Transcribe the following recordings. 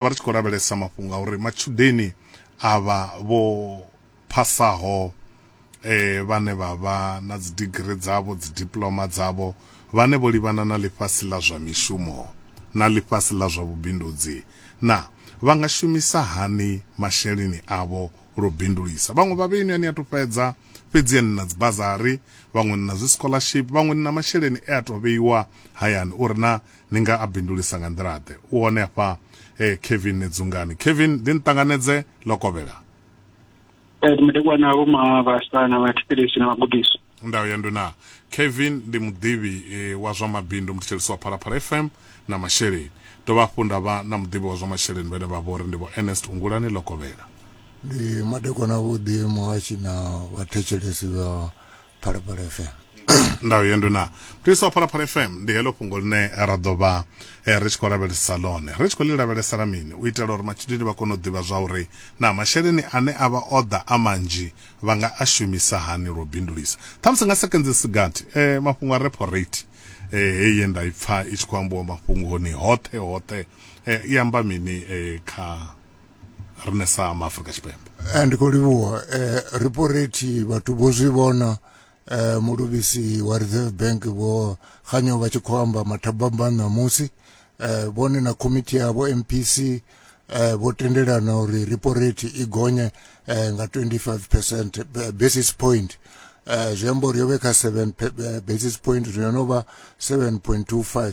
vha ri tshi khou lavhelesa mafhungo a uri matshudeni avha vho phasaho eh vhane vha vha na dzi digiri dzavho dzi diploma dzavho vhane vho livhana na ḽifhasi ḽa zwa mishumo na ḽifhasi ḽa zwa vhubindudzi na vha nga shumisa hani masheleni avho lwo bindulisa vhaṅwe vha vheni ani a to fhedza fhedzi ani na dzi bazari vhaṅwe na zwi scholarship vhaṅwe na masheleni e a to vheiwa hayani uri na ni nga a bindulisa nga nḓila-ḓe u hone hafha eh, kevin nedzungani kevin ndi ni ṱanganedze ḽo kovhela eh, mudekwa na vho mavhasa na vhathetshelesi na vhagudisi ndayo ya nduna kevin ndi muḓivhi eh, wa zwa mabindu muthetshelesi wa phalaphala fm na masheleni dovha hafhu nda vha na muḓivhi wa zwa masheleni vhene vha vho ri ndi vho ernest ungulani ḽo kovhela ndi madekwana vhuḓi muhashi na vhathetshelesi vha phalaphala fm ndayo yendo na mutisa wa phalaphala fm ndi heḽo fhungo ḽine ra ḓo vha eh, ri tshi khou lavhelesa ḽone ri tshi khou ḽi lavhelesela mini u itela uri matshudeni vha kone u ḓivha zwa uri na masheleni ane a vha o ḓa a manzhi vha nga a shumisa hani lwo bindulisa ṱhamusi nga sekenzi sigathi eh, mafhungo a repo rate eh, heyi ye nda i pfa i tshi khou ambiwa mafhungoni hoṱhe hoṱhe eh, i amba mini eh, kha rine sa ma Afrika Tshipembe eh, ndi khou livhuwa eh, riporeti vhathu vho zwi vhona eh, muluvhisi wa Reserve Bank vho khanyo vha tshi khou amba mathabamba ṋamusi eh, vhone na komiti yavho MPC eh, vho tendelana uri riporeti i gonye eh, nga 25 percent eh, basis point eh, zwi amba uri yo vhe kha 7 eh, basis point zwino no vha 7.25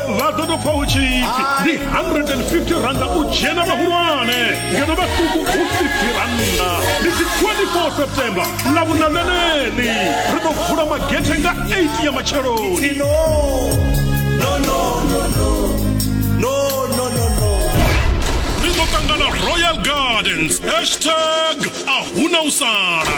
vha ḓo tou pfa hu tshi pfi ndi 150 randa u dzhena vhahulwane ngeno vhaṱuku hu 50 randa ndi si 24 september ḽa vhuna ḽeneḽi ri ḓo vula magethe nga 8 ya matsheloni ri ḓo ṱangana royal gardens hashtag a huna u sala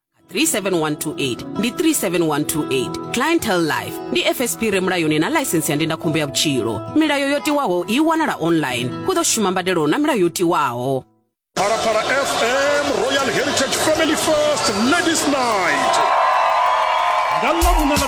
37128 ndi 37128 clientele life ndi fsp re mulayoni na ḽaisensi ya ndindakhombo ya vhutshilo milayo yo tiwaho i wanala online hu ḓo shuma mbadelo na milayo yo tiwaho Parapara FM Royal Heritage Family First Ladies Night. Nga ḽa vhuṋa ḽa